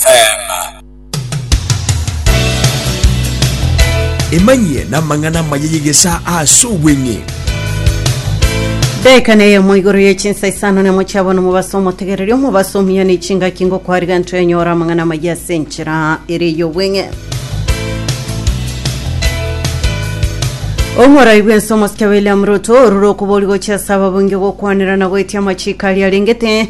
Teema. Emanyie namang'ana amaya y'egesaa aase obweng'e. Daekana eyemo igoro ye chinsa isano nemo chiabo nomobaso omotegereri omobaso omuya ne chingaki ngokwariga nto enyora amang'ana amaya ase enchera ere ey'obweng'e omorai bwense omosike william ruto orure okobori gochia ase ababunge gokwanera na goetia amachiko aria arengete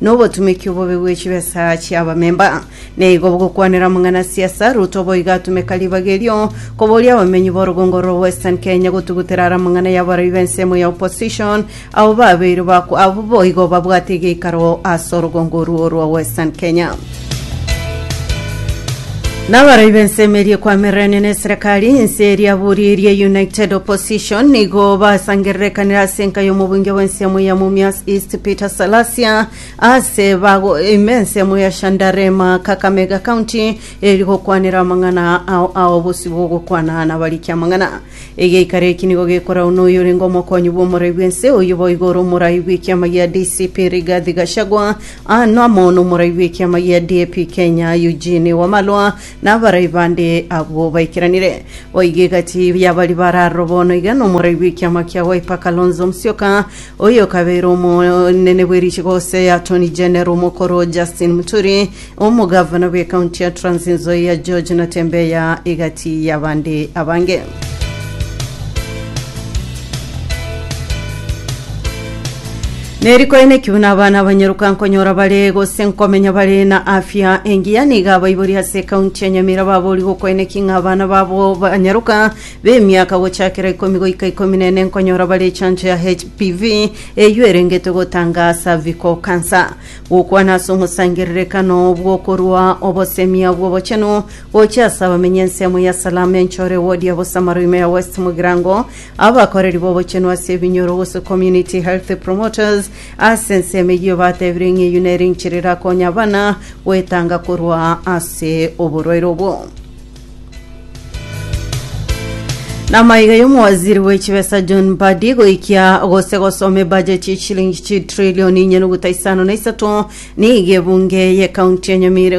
Nobotumeki obobe bwe chibesa chi'abamemba. Neigo bogokwanera omong'ana siasa Ruto boigo atumeka ribaga erio koboria abamenyi b'orogongo rwa Western Kenya gotugutera ara amang'ana y'abarobi b'ensemo ya opposition abwo babeire abwo boigo babwate egeikaro ase orogongo orwo rwa Western Kenya. Nabaroi b'ensemo eria ekwamereranie n'eserekari, ense eria buri eria United Opposition nigo basangererekanire ase enka y'omobunge bw'ensemo ya Mumias East Peter Salasia ase bago ime ensemo ya Shandarema Kakamega County eri gokwanera amang'ana ao ao bosio bw'ogokwana nabarikia amang'ana. Egeikaro eki nigo gekorawa noyorenge omokonyi bw'omorai bw'ense, oyio boigo ore omorai bw'ekiama gia DCP Rigathi Gachagua, aano amo nomorai bw'ekiama gia DAP Kenya Eugene Wamalwa, na abarai bande abwo baikeranire. Boigo egati y'abaria bare aroro bono iga nomorai bw'ekiama kia Wiper Kalonzo Musyoka, oyokabeire omonene bw'erichigo gose Attorney General omokoro Justin Muturi, Omogavana bw'Ekaunti ya Trans Nzoia George Natembeya egati y'abande abange. Nerikoeneki buna abana abanyeruka nkonyora bare gose nkomenya bare na afya engiya niga abaibori ase ekaunti ya Nyamira babori gokoeneki ng'a abana babo banyeruka b'emiaka gochakera ikomi goika ikomi na ene nkonyora bare echancho ya HPV eyio erengete gotanga cervical cancer Gokwana ase omosangererekano bw'okorua obosemia bw'obochenu gochia ase abamenyi ensemo ya Salaam enchoro ewodi ya bosamaro ime ya West Mugirango, abakoreri b'obochenu ase ebinyoro gose community health promoters ase ensemo eyio batebire ng'a eyio nere enchera erakonya abana goetanga korwa ase oborwaire obwo. Namaiga y'omowaziri w'echibesa John Mbadi goikia gose gosoma ebajeti y'echilingi chitrilioni inye nuguta isano na isato nigo ebunge y'ekaunti ya Nyamira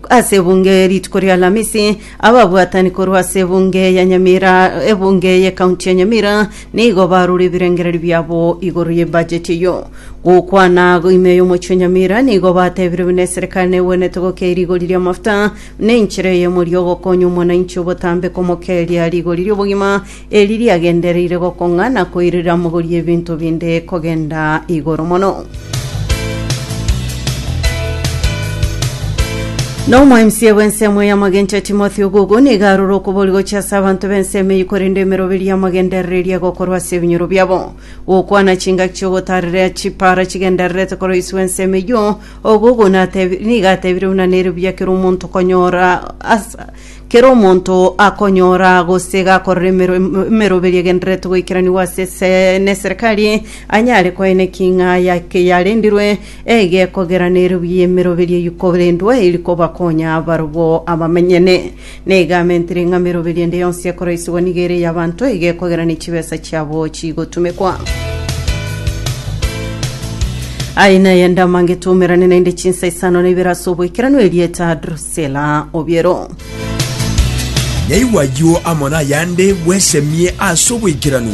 ase ebunge rituko ria Alamisi ababwatani korwa ase ebunge ya Nyamira ebunge y'ekaunti ya Nyamira nigo barure ebirengererio biabo igoro y'ebajeti eyio gokwana ime y'omochie Nyamira nigo batebire buna eserekari negwenerete gokea rigori ri'amafuta Nenchera eyemo eria ogokonya omwananchi obotambe komokeria rigori ri'obogima, eri riagendereire gokong'a na koirera mogori ebinto binde kogenda igoro mono. Na omoemisia bw'ensemo y'amagencho Timothy Ogugu nigo aroro okobori gochia ase abanto b'ensemo eyio korende emeroberio y'amagenderereria egokorwa ase ebinyoro biabo. Gokwana chingaki chi'ogotaarera chipaara chigendererete koroiswa ensemo eyio Ogogo natebi- nigo atebire buna nere buya kera omonto konyora as- kera omonto akonyora gose gakorera emero- em- emeroberio egendererete goikeranigwa ase ese- neserekari anyare koeneki ng'a yake yarendirwe egekogera nere buya emeroberio eyio korendwe eri kobakonya barobwo abamenyene. Na egaamenti reng'ameroberi ende yonsi ekoreisigwa nigo ere ey'abanto, iga ekogera ne chibesa chiabo chigotumekwa. Aye naye ndamangete omerane naende chinsa isano na ibere ase oboikeranu erieta Drusela obiero. Nyaigwa ayio amo nayande bwesemie ase oboikeranu.